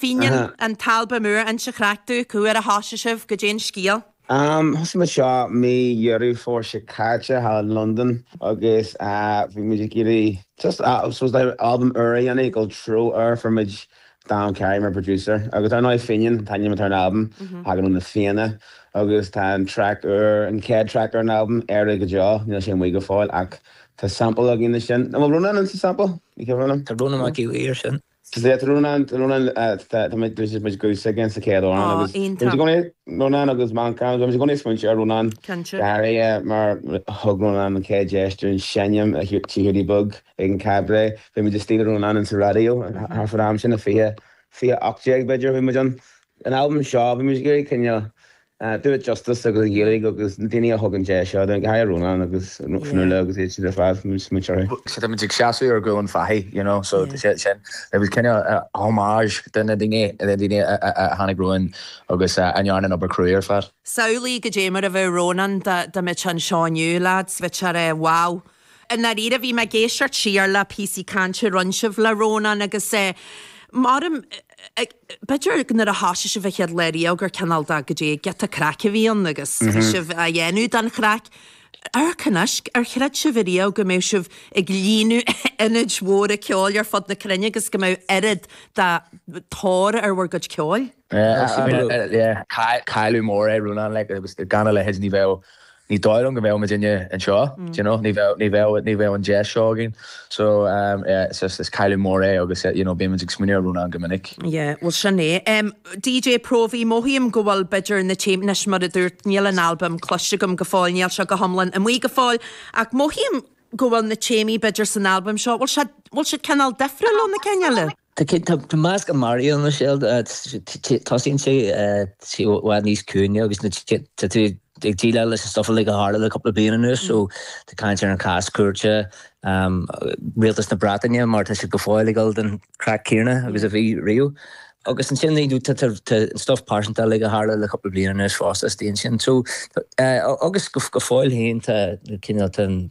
Fenian an t-albam úr inis dúinn cá huair a thosaigh sibh, goidé an scéal. Thosaigh muid seo mí Dheireadh Fómhair seo caite thall i Londain agus bhí muid ag iarraidh just albam úr a dhéanamh, dul treo úr fuair muid Dan Carey mar producer agus dar ndóigh Fenian an t-ainm atá ar an albam, thagann ó na Fianna agus tá an traic úr, an chéad traic ar an albam, Éire go Deo, níl sé amuigh go fóill ach tá sample againn ansin, an bhfuil Rónán ann sa sample? Tá Rónán Mac Aodha air sin. Slat Rónán, tá Rónán, tá muid, tá muid a ghuthsa againn sa chéad amhrán agus tá muid i gcónaí, Rónán agus Manchán, tá muid i gcónaí ag smaointiú ar Rónán, go háirithe mar thug Rónán an chéad deis dúinn seinm Tigh Hiúdaí Beag ag an Chabaret, bhí muid istigh le Rónán sa raidió thar fán am sin, i 20, 2018 b'fhéidir a bhí muid ann. An albam seo, bhí muid ag iarraidh coinneáil do it justice agus an Ghaeilge agus na daoine a thug an deis seo dúinn, go háirithe Rónán agus Fionnuala agus iad siúd ar fad, bhí muid ag smaointeamh orthu. Sea, tá muid ag seasamh ar ghuaillí fathaigh, you know, so tá sé sin, it was kinda homage do na daoine, na daoine a tháinig romhainn agus a rinne an obair chruaidh ar fad. Samhlaigh goidé mar a bheadh Rónán dá mbeadh sé anseo inniu, leads, bheadh sé, wow. I ndáiríre, bhí mé ag éisteacht siar le píosaí cainte a rinne sibh le Rónán agus measaim, b'fhéidir nuair a thosaigh sibh a chéaduair riamh gur cineál de, goidé, giota craic a bhí ann agus bhí sibh á dhéanamh don chraic. Ar chreid, ar chreid sibh ariamh go mbeadh sibh ag líonadh ionaid mhóra ceoil ar fud na cruinne agus go mbeadh oiread de thóir ar bhur gcuid ceoil? Cailleadh mór é Rónán, agus gan a leithéid ní bheadh Ní dóigh liom go mbeadh muidinne anseo, do you know, ní bheadh, ní bheadh, ní bheadh an deis seo againn. So, yeah, is, is, is cailleadh mór é agus, you know, bíonn muid ag smaoineamh ar Rónán go minic. Yeah, bhuel sin é. Em, DJ Próvaí, mothaím go bhfuil b'fhéidir na téamaí, anois, mar a dúirt, níl an albam cloiste agam go fóill, níl sé go hiomlán amuigh go fóill, ach mothaím go bhfuil na téamaí b'fhéidir san albam seo, bhfuil siad, bhfuil siad cineál difriúil óna chéile? Tá meascán ann i ndáiríre, so. Tosaíonn sé i bhfad níos ciúine agus tá tú ag déileáil leis an stuff uilig a tharla le cúpla bliain anuas. So, tá caint ar an chás cúirte, rialtas na Breataine mar tá siad go fóill ag gabháil don chraic céanna agus a bhí riamh. Agus ansin, you know, tá an stuff pearsanta uilig a tharla le cúpla bliain anuas fosta istigh ansin. So, agus go fóill féin tá cineál, tá an.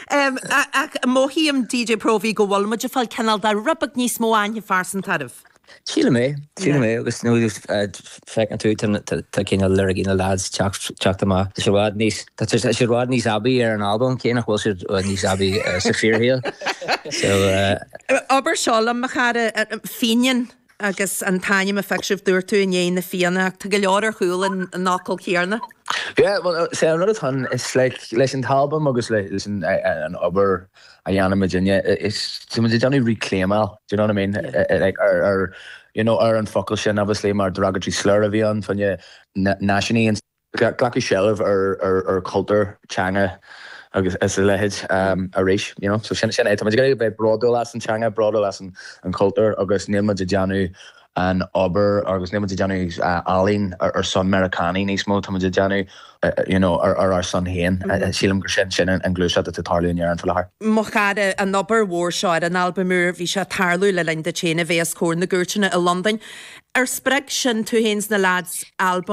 Em, ach mothaím, DJ Próvaí, go bhfuil muid ag fáil cineál de rud beag níos mó aithne phearsanta oraibh. Sílim é, sílim é, agus you know feiceann tú, tá cineál liricí na leaids teacht amach, tá sé bhfad níos, tá sé bhfad níos aibí ar an albam, cé nach bhfuil siad bhfad níos aibí sa fíorshaol. So, eh. Abair seo liom, Mo Chara, Fenian. agus an t-ainm a phioc sibh dúirt tú i ndiaidh na Fianna. Tá go leor ar chúl an fhocail chéanna. Yeah, bhuel, is é an rud atá ann, is like, leis an t-albam agus leis an obair a dhéanaimid inniu, is, tá muid ag déanamh reclaim-áil, do you know what I mean? Yeah. Like, ar, ar, you know, ar an focal sin, obviously, mar derogatory slur a bhí ann faoi náisiúnaí, glacadh seilbh ar chultúr, teanga agus a leithéid arís. Sin é, tá muid ag iarraidh a bheith bródúil as an teanga, bródúil as an chultúr agus níl muid ag déanamh an obair agus níl muid ag déanamh ealaín ar son Meiriceánaigh níos mó, tá muid ag déanamh ar ár son féin. Sílim gur sin an gluaiseacht atá ag tarlú in Éirinn faoi láthair. Mo chara, an obair mhór seo ar an albam úr, bhí sé ag tarlú le linn duit féin a bheith os comhair na gcúirteanna i Londain. Ar spreag sin tú féin is na leaids? Albam.